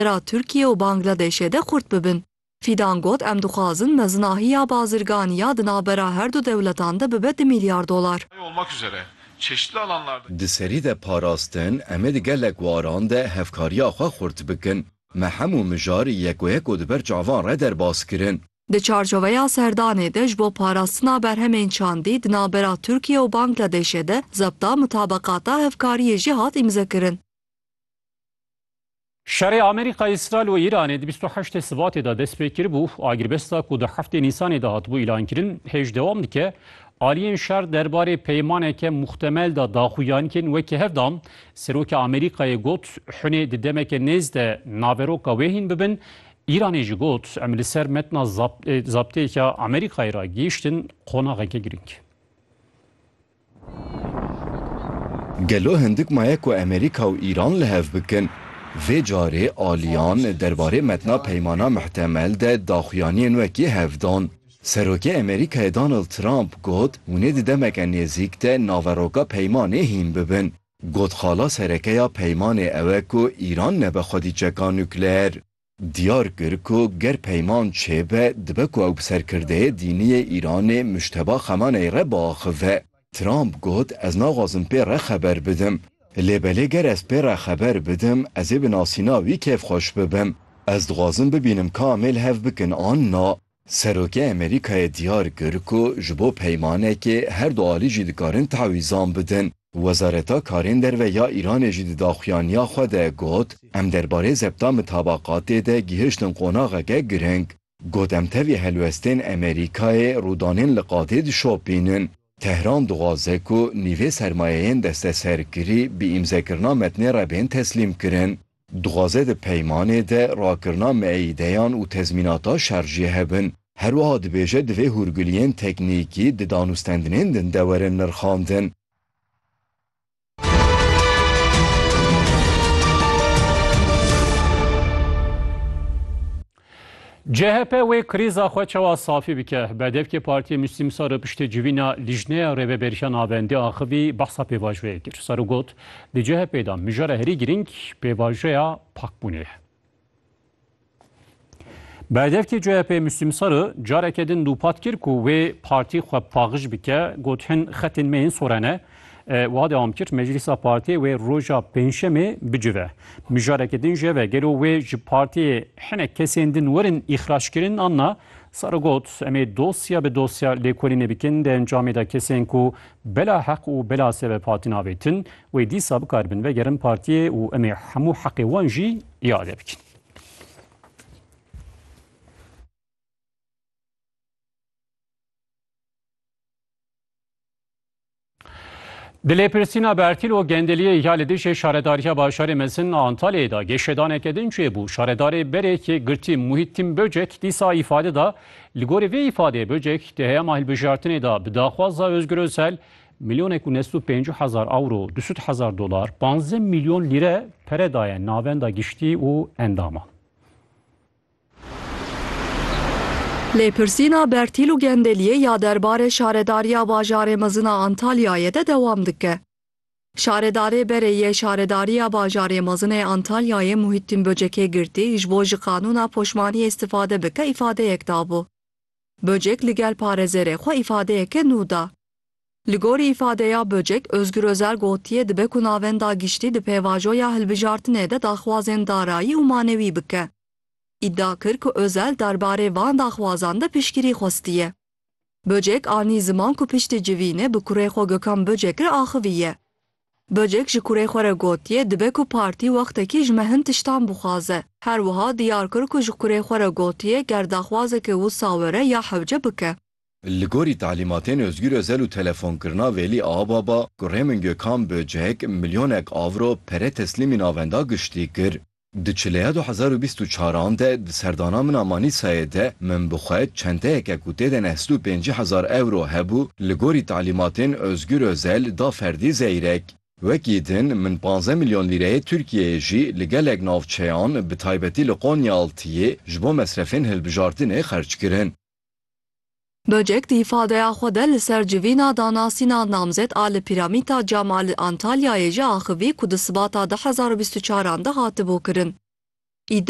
ra Tirkiye û Bangladeşê de xurt bibin. Fîdan got em dixwazin mezinahiya bazirganî ya di navbera her du dewletan de bibe du mîlyar dolar. Di serî de parastin em ê di gelek waran de hevkariya xwe xurt bikin. Me hemû mijar yekoyeko di ber çavan re derbas kirin. Di çarçoveya serdanê de ji bo parastina berhemên çandî di navbera Tirkiye û Bangladeşê de zebta mutabeqata hevkariyê jî hat îmzekirin. Şerê Amerîka, Îsraîl û Îranê di bîst û heştê Sibatê de dest pê kiribû. Agirbesta ku di heftê Nîsanê de hatibû îlankirin hêj dewam dike. Aliyên şer der barê peymaneke muhtemel de daxuyankên wekî hev dan. Serokê Amerîkayê got, Hunê di demeke nêz de naveroka wê hîn bibin. Îranê jî got, Em li ser metna zabteyeke Amerîkayê re gihiştin qonaxeke girîng. Gelo hindik maye ku Amerîka û Îran li hev bikin? Vê carê aliyan derbarê metna peymana mihtemel de daxuyaniyên wekî hev dan. Serokê Amerîkayê Donald Trump got hûn ê di demeke nêzîk de naveroka peymanê hîn bibin. Got xala sereke ya peymanê ew e ku Îran nebe xwedî çeka nukleer. Diyar kir ku ger peyman çêbe dibe ku ew bi serkirdeyê dînî yê Îranê Mujteba Xemaney re biaxive. Trump got ez naxwazim pê re xeber bidim. Lê belê ger ez pê re xeber bidim ez ê bi nasîna wî kêfxweş bibim. Ez dixwazim bibînim ka em ê li hev bikin an na. Serokê Amerîkayê diyar kir ku ji bo peymanekê her du alî jî dikarin tawîzan bidin. Wezareta Karên Derve ya Îranê jî di daxuyaniya xwe de got, Em derbarê zebta mitabaqatê de gihiştin qonaxeke giring. Got em tevî helwestên Amerîkayê rûdanên li qadê dişopînin. Tehran dixwaze ku nîvê sermayeyên desteserkirî bi îmzekirina metnê re bên teslîmkirin. Dixwaze di peymanê de rakirina meîdeyan û tezmînata şer jî hebin. Her wiha dibêje divê hûrguliyên teknîkî di danûstendinên din de werin nirxandin. CHP wê krîza xwe çawa safî bike? Berdevkê Partiyê Mûslîm Saro piştî civîna Lîjneya Rêveberiya Navendî axivî behsa pêvajoyê kir. Saro got, Di CHP'ê de mijara herî girîng pêvajoya pakbûnê ye. Berdevkê CHP'ê Mûslîm Saro careke din dûpat kir ku wê partî xwe paqij bike, got hin xetên me yên sor e ne. Wiha dewam kir, Meclîsa Partiyê wê roja Pêncşemê bicive. Mijarekî din ji hev e, gelo wê ji Partiyê hinek kesên din werin îxraçkirin an na? Saro got, Em ê dosya bi dosya lêkolînê bikin, di encamê de kesên ku bela heq û bela sebeb hatin avêtin, wê dîsa bikaribin vegerin Partiyê û em ê hemû heqê wan jî îade bikin. Di lêpirsîna Bertîl û Gendeliyê ya li dijî Şaredariya Bajarê Mezin a Antalyayê de gêşedaneke din çêbû. Şaredarê berê yekgirtî Muhîttîn Böcek dîsa îfade da. Li gorî vê îfadeyê Böcek di heyama hilbijartinê de bi daxwaza Ozgur Ozel milyonek û nest û pêncî hezar ewro, du sed hezar dolar, panzdeh milyon lîre pere daye navenda giştî û endaman. Lêpirsîna Bertîl û Gendeliyê ya derbarê şaredariya bajarê mezin a Antalyayê de dewam dike. Şaredarê berê yê şaredariya bajarê mezin ê Antalyayê Muhîttîn Böcekê girtî ji bo ji qanûna poşmaniyê îstifade bike îfadeyek dabû. Böcek li gel parêzêrê xwe îfadeyeke nû da. Li gorî îfadeya Böcek, Ozgur Özel gotiye dibe ku navenda giştî di pêvajoya hilbijartinê de daxwazên darayî û manewî bike. Îdia kir ku Özel derbarê van daxwazan de piştgirî xwestiye. Böcek anî ziman ku piştî civînê bi kurê xwe Gökhan Böcekir axiviye. Böcek ji kurê xwe re gotiye dibe ku partî wextekî ji me hin tiştan bixwaze. Her wiha diyar kir ku ji kurê xwe re gotiye ger daxwazeke wisa were ya hewce bike. Li gorî talîmatên Ozgür Özel û telefonkirina Velî Ağababa, Kurê min Gökhan Böcek milyonek avro pere teslîmî navenda giştî kir. Di çileya du hezar û bîst û çar an de di serdana min a Manîsayê de min bi xwe çenteyeke ku tê de neh sed û pêncî hezar ewro hebû li gorî talimatên Ozgür Özel da ferdî Zeyrek. Wekî din min panzdeh milyon lîreyê Tirkiyeyê jî li gelek navçeyan bi taybetî li Qonyaaltiyê ji bo mesrefên hilbijartinê xerc kirin. Böcek di îfadeya xwe de li ser civîna danasîna namzet a li Pîramîta Cama li Antalyayê jî axivî ku di sibata du hezar û bîst û çaran de hatibû kirin îdia.